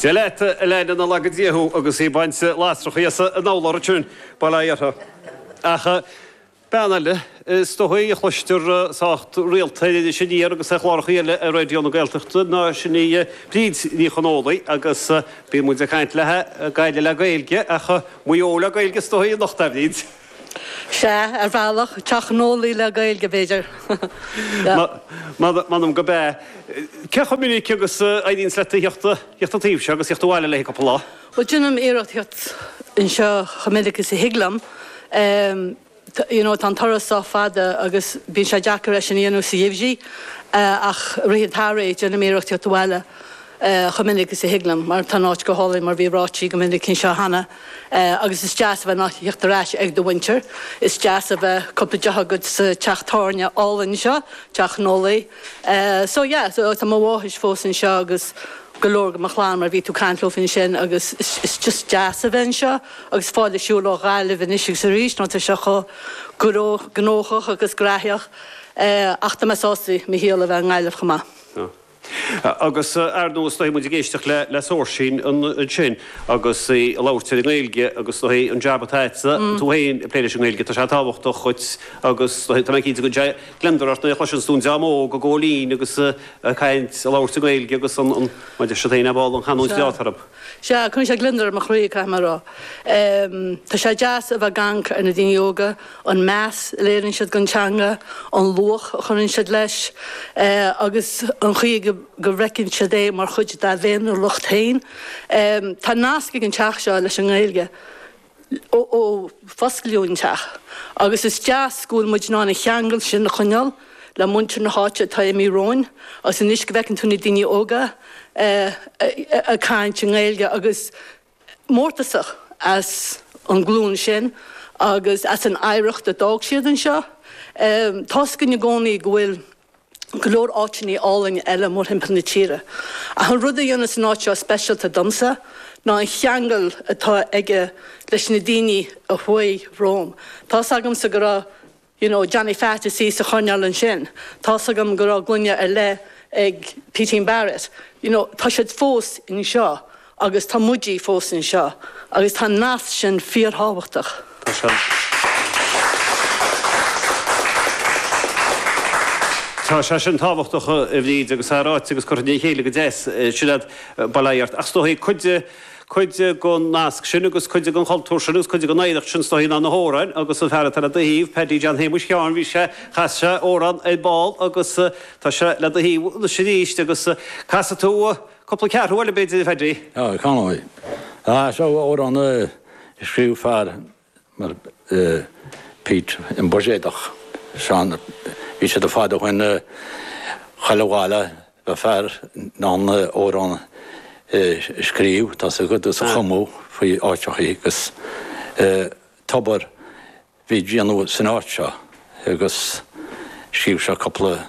Dia leat, a leaindeanna, nár laga Dia thú agus í ag baint lasrachaí as in amhlaird sin, bail ó Dhia orthu. Ach bean eile is dóigh a chloistear sách rialta ar Iris Aniar agus ar chlárachaí eile ar Raidió na Gaeltachta, ná sin í Bríd Ní Chonghóile agus bíonn muid ag caint léi, Gaillimh le Gaeilge ach Maigh Eo le Gaeilge is dóigh anocht, a Bhríd. Sea, ar bhealach, Teach Noli le Gaeilge, b'fhéidir. M'anam gurb ea. Cé chomh minic agus a éiríonns leatsa a thíocht an taobh seo agus a thíocht abhaile le haghaidh cúpla lá? Bhuel, déanaim iarracht a thíocht anseo chomh minic is a thig liom. You know, tá an turas sách fada agus bíonn sé deacair é sin a dhéanamh sa gheimhreadh ach i rith an tsamhraidh déanaim iarracht a thíocht abhaile. é chomh minic is a thig liom mar tá an áit go hálainn mar bhí ráite go minic anseo cheana agus is deas a bheith in ann a thíocht ar ais ag do mhuintir. Is deas a bheith cúpla deoch agat sa teach tábhairne álainn seo, Teach Noli. So yeah, so tá mo mháthair fós anseo agus go leor de mo chlann mar bhí tú ag caint leofa ansin agus is just deas a bheith anseo agus fáil ar shiúl ó Ghaillimh anois agus arís mar tá sé chomh gnóthach agus graitheach ach tá mé sásta mo shaol a bheith i nGaillimh chomh maith. Agus ar ndóigh is dóigh muid ag éisteacht le le Seoirsín ansin agus í ag labhairt ar an nGaeilge agus is dóigh an jab atá agatsa tú féin ag plé leis an nGaeilge tá sé tábhachtach dhuit agus is dóigh tá mé cinnte go gcuireann sé gliondar ort nuair a chloiseanns tú an dream óg ag gabháil fhoinn agus ag caint ag labhairt i nGaeilge agus an an maidir siad féin ab áil an chanúint bheo atá orthu. Sea, cuireann sé gliondar ar mo chroí caithfidh mé a rá. Tá sé deas a bheith ag amharc ar na daoine óga, an meas a léiríonn siad don teanga, an luach a chuireann siad leis, agus an chaoi go bhfeiceann siad é mar chuid dá bhféiniúlacht féin. Tá nasc ag an teach seo leis an nGaeilge ó fosclaíodh an teach agus is deas go bhfuil muid in ann an cheangal sin a choinneáil le muintir na háite atá imithe romhainn agus anois go bhfeiceann tú na daoine óga ag caint i nGaeilge agus mórtasach as an ghlúin sin agus as an oidhreacht a d'fhág siad anseo. Tá's againn i gcónaí go bhfuil go leor áiteannaí álainn eile mórthimpeall na tíre ach an rud a dhéanas an áit seo speisialta domsa ná an cheangal atá aige leis na daoine a chuaigh romham. Tá's agamsa go raibh. you know Johnny Pheaits ina shuí sa choirnéal ansin, tá's agam go raibh gloine ar leith ag Peaitín Barrett, you know tá siad fós anseo agus tá muidí fós anseo agus tá an nasc sin fíorthábhachtach. Tá sé sin. Tá sé sin tábhachtach a Bhríd agus tá sé ráite agus curtha le chéile go deas, ansin agat bail ó Dhia ort, ach is dóichí cuid de, cuid den nasc sin agus cuid den chultúr sin agus cuid den oidhreacht sin is dóichí ná na hamhráin agus an fear atá le do thaobh, Paddy John Shéamuis Sheáin, bhí sé, chas sé amhrán ar ball agus tá sé le do thaobh anois arís agus casfaidh tú cúpla ceathrú eile b'fhéidir a Phaddy? Tá, chan fhuil. Ach seo amhrán a scríobh fear mar phit im buiséadach san bhí siad ar fad ach in chuile bhaile bheadh fear in ann amhrán a scríobh tá a fhios agat is a chumadh faoi áiteachaí agus tobar a bhí á dhéanamh san áit seo agus scríobh sé cúpla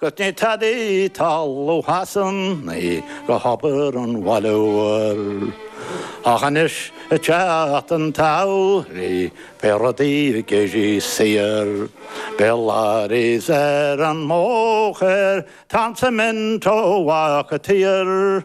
'Gus ní tada talmhú Shasanaí do thobar an bhaile mhóir, Ach anois ag teacht an tsamhraidh beidh rudaí ag éirí saor, Beidh lorries ar an mbóthar, tá an cement tagtha i dtír,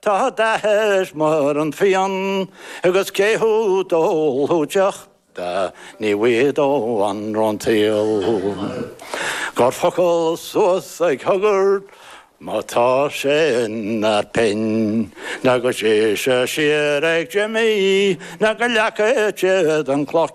Tá dath air mar an fíon agus cé thú d'ólfadh deoch de ní bhfuighead ó anró an tsaoghail. Cuir focal suas ag Huggard má tá sé in ar pinn nó go dté sé siar ag Jimmy nó go leaga siad an chloch